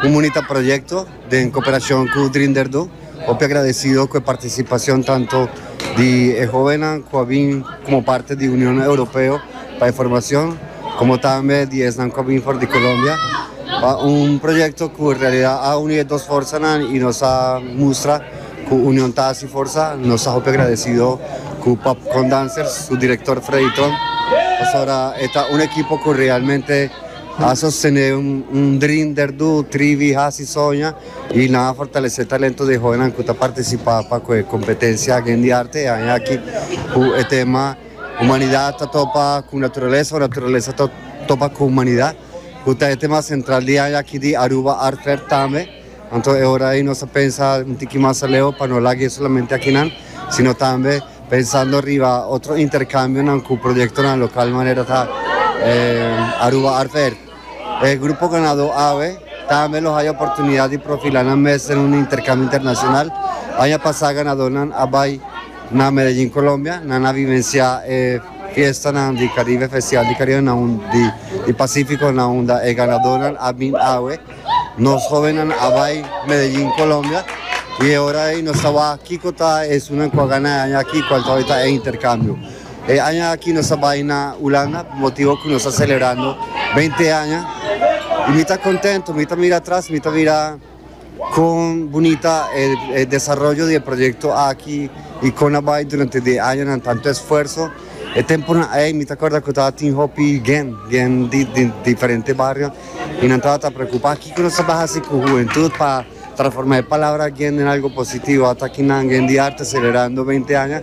Comunita Proyecto den cooperacion cu Drinderdo hopi agradecido cu e participacion tanto di e hobennan cu a bin como parte di Union Europeo pa e formacion como tambe di esnan cu a bin for di Colombia pa un proyecto cu en realidad a uni e dos forsanan y nos a mustra cu union ta haci forsa. Nos ta hopi agradecido cu Popcorn Dancers su director Freddy Trom pasobra e ta un ekipo cu realmente. Asa sende un dream der do trivi hasi soña y nan a fortalece talento de joenan cu ta participa pa cu e competencia aki di arte e aña aki cu e tema Humanidad ta topa cu naturaleza o naturaleza ta topa cu humanidad cu ta e tema central di aña aki di Aruba Art Fair tambe. Anto e ora ayi nos a pensa un tiki mas aleo pa no lag'e solamente akinan sino tambe. Pensando riba otro intercambionan cu proyectonan local manera ta e Aruba Art Fair, e grupo ganado awe tambe lo haya oportunidad di profila nan mes den un intercambio internacional. Aña pasa ganadornan a bay na Medellin, Colombia, nan a vivencia e fiestanan di Caribe, Festival di Caribe, na un di Pacifico, na unda e ganadornan a bin awe. Nos hobennan a bai Medellin, Colombia y e ora ei nos ta waha kico ta esunnan cu a gana e aña aki, cual todavia ta e intercambio. E aña aki nos a bai na Hulanda pa motibo cu nos ta celebrando beinti aña y mi ta contento, mi ta mira atras, mi ta mira con bunita e desaroyo di e proyecto aki y con a bai durante di e añanan, tanto esfuerzo. E tempunan ei mi ta corda cu ta tin hopi gen, gen di diferente bario y nan tabata preocupa kico nos a bay haci cu hubentud pa transforma e palabra gen den algo positivo. Ata aki nan Gen di Arte celebrando beinti aña.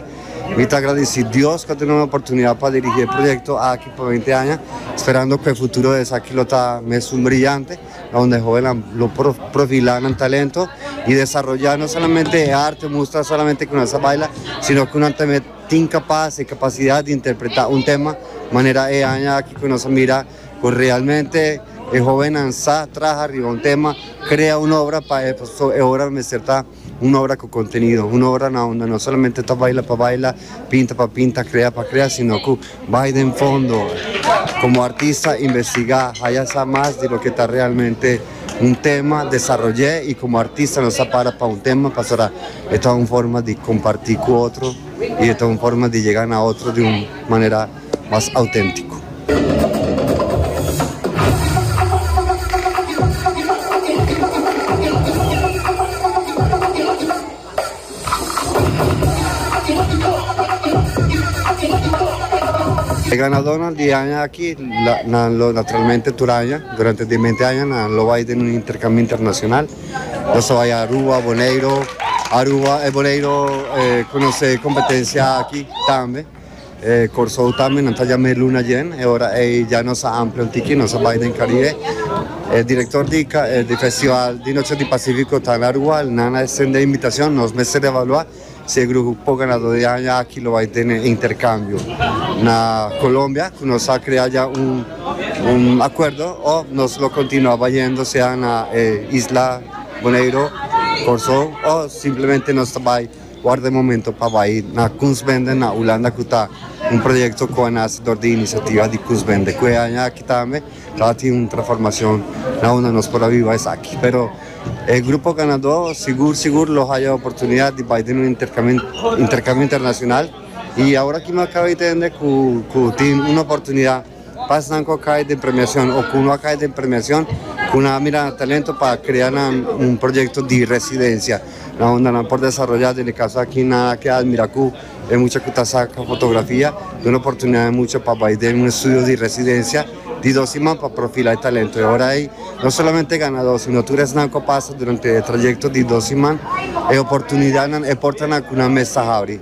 Mi ta agradeci Dios cu a dunami e oportunidad pa dirigi e proyecto aki pa beinti aña, sperando cu e futuro di esaki lo ta mes un brillante unda e hobennan lo por profila nan talento y desaroya no solamente e arte mustra solamente cu nan sa baila sino cu nan tambe Tin kapas e kapasidat di interpretá un tema, manera e aña aki ku nos a mira ku realmente e hóbennan sa traha riba un tema, krea un obra pa e. Pasobra e obra lo mester ta un obra ku kontenido, un obra na unda no solamente ta baila pa baila, pinta pa pinta, krea pa krea, sino ku. Bai den fondo. Como artista investiga, haya sa mas di loke ta realmente un tema, desaroy'e y como artista nos a para pa un tema pasobra e ta un forma di comparti cu otro y e ta un forma di yega na otro di un manera mas autentico. E ganadónan di aña aki nan lo naturalmente tur aña durante di bente aña nan lo bai den un interkambio internashonal. Nan sa bai Aruba, Boneiro. Aruba e Boneiro konosé e kompetensia aki tambe. E Kòrsou tambe, nan ta djama e luna djen, e ora ei dja nos a amplia un tiki, nos a bai den Karibe. E direktor di di festival di Noche di Pasífiko ta na Ruwal, nan a estendé inbitashon, nos mester evaluá si e grupo ganadó di aña aki lo bai tene interkambio na Kolombia, ku nos a krea dja un akuerdo, òf nos lo kontinuá bai yendo sea na e isla Boneiro, Kòrsou, o simplemente nos ta bai. Worda e momento pa bai na Kunstbende na Hulanda ku ta un proyekto ku a nase dor di inisiativa di Kunstbende ku e aña aki tambe lo a tin un transformashon na unda nos por a biba esaki. Pero e grupo ganadó sigur sigur lo haya e oportunidat di bai den un interkambio internashonal i awor aki mi a kaba di tende ku tin un oportunidat. Pasnan cu a cay den premiacion o cu no a cay den premiacion cu nan a mira nan talento pa crea nan un proyecto di residencia na unda nan por desaroya. Den e caso aki nan a ke admira cu e mucha cu ta saca fotografia duna e oportunidad e mucha pa bay den un estudio di residencia di dos siman pa profila e talento. E ora ey no solamente e ganador sino tur esnan cu a pasa durante e trayecto di dos siman e oportunidadnan, e portanan cu nan mes ta habri.